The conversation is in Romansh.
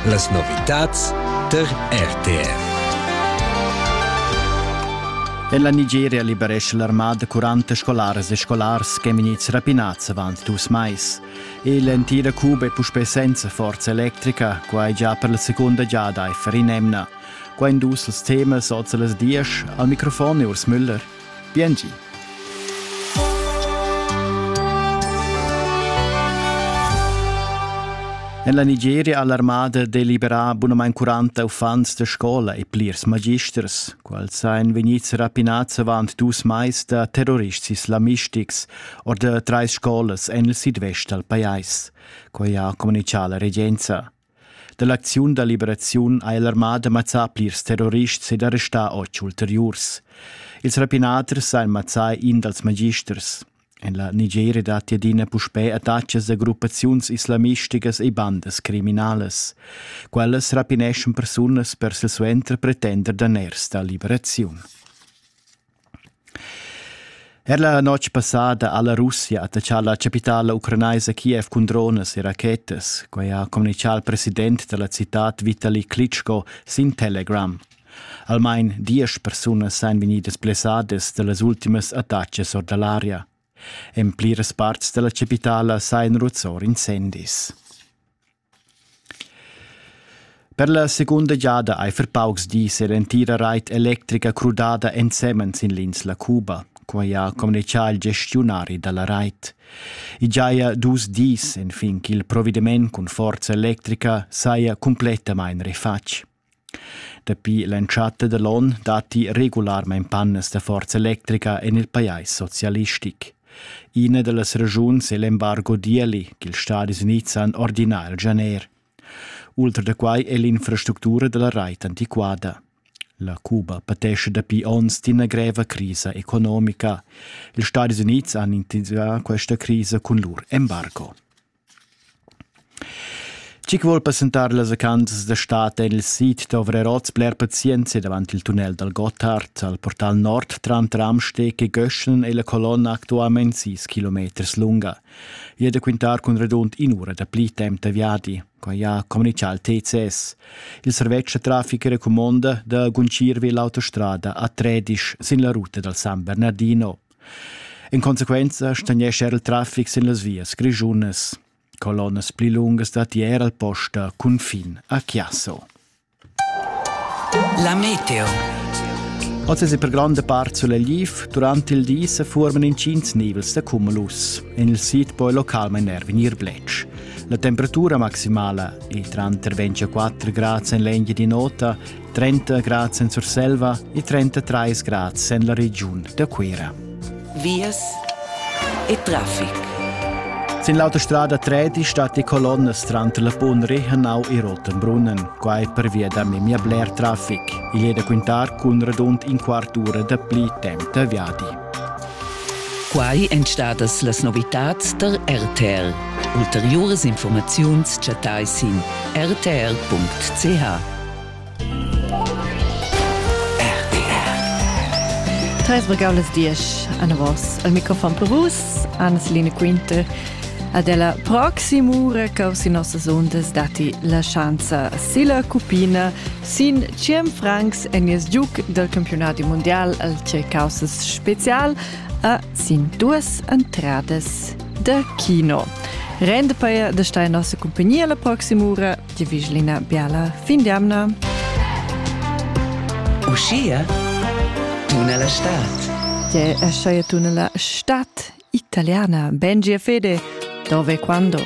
Las novitads tar RTV. En la Nigeria liberesce l'armada 40 scolares e scolars che minits rapinats avant dus mais. L'entira Cuba è puspè senza forza electrica, quai già per la seconda giada a Ferinemna. Qua in dus als temas oz las dies, al microfon e Urs Müller. Biengi. En la Nigeria ha l'armada deliberà bunamain 40 uffants da scola e plirs magisters, quals ein vegnids rapinads avant dus mais da terrorists islamistics or da trais scolas en il sidvest dal pajais. Quai ha communitgà la regenza. Dall'acziun da liberaziun ha l'armada mazzà plirs terrorists ed arrestà otg ulteriurs. Ils rapinaders han mazzà in dals magisters. En la Nigeria datti adina puspè attacks da gruppaziuns islamisticas e bandas criminalas. Quellas rapineschan persunas per silsuenter pretender daners da liberaziun. Er la notg passada ha la Russia attaccà la chapitala ucranaisa Kiev cun dronas e rachetas, quai ha communitgà il president da la citad Vitali Klitschko sin Telegram. Almain diesch persunas èn vegnidas blessadas da las ultimas attacas or da l'aria. En pliras parts da la chapitala sajan ruzzor incendis. Per la secunda giada ei per paucs dis era entira reit electrica crudada ensemen sin l'insla Cuba, quei ha communicau il gestiunari dalla reit. I giaja dus dis enfin ch'il provediment cun forza electrica saja cumplettamain refatg. Dapi l'entschatta da l'onn datti regularmain pannas da forza electrica en il pajais socialistic. Ina da las ragiuns è l'embargo d'ieli ch'ils Stadis Unids han ordinà il gener. Ultra da quai è l'infrastructura da la rait antiquada. La Cuba patescha dapi onns d'ina greva crisa economica. Ils Stadis Unids han integrà questa crisa cun lur embargo. Chi chi vuol passentar las vacanzas da stad en il sid dovra oz bler pazienza davant il tunnel dal Gotthard al portal nord tranter Amsteg e Göschen e la colonna actualmain 6 km lunga. I è da quintar cun radund in'ura da pli temp da viadi, quai ha communichà il TCS. Il servetsch da traffic recumonda da guncir vi l'autostrada a Tredisch sin la ruta dal San Bernardino. In consequenza stagnescha er il traffic sin las vias grischunas. Colonnas pli lungas datti er al posta cunfin a Chiasso. La meteo. Oz è per granda part sulegl durante il di se forman incints nivels da cumulus. En il sid poi local mener venir blec. La temperatura maximala è tra 24 gradi in legna di nota 30 grads en Surselva e 33 grads en la regiun da Cuira. Vias e traffic. Sin l'autostrada 3 stat die Colonnes tranter la Punri Hanau e Rottenbrunnen. Quai pervia da memia bler traffic. Il è da quintar cun radund in quart ura da pli temp da viadi. Quai èn stadas las novitads da RTL. Ulteriuras informaziuns chattai sin rtr.ch. Tres regaulas dies anavos al microfon per vus, Anne-Celine Quinter. Ad ella proximura cau si nossas ondas dati la schanza silla cupina Sin tschient francs en nies giug dal campiunadi mundial al Tschecaussas spezial a sin duas entradas da kino. Rende per da stai nossa compagnia la proxima ura di vigilina biala fin d'amna. Uschia tuna la stad. Te esce tuna la stad italiana. Bengia Fede, dove quando?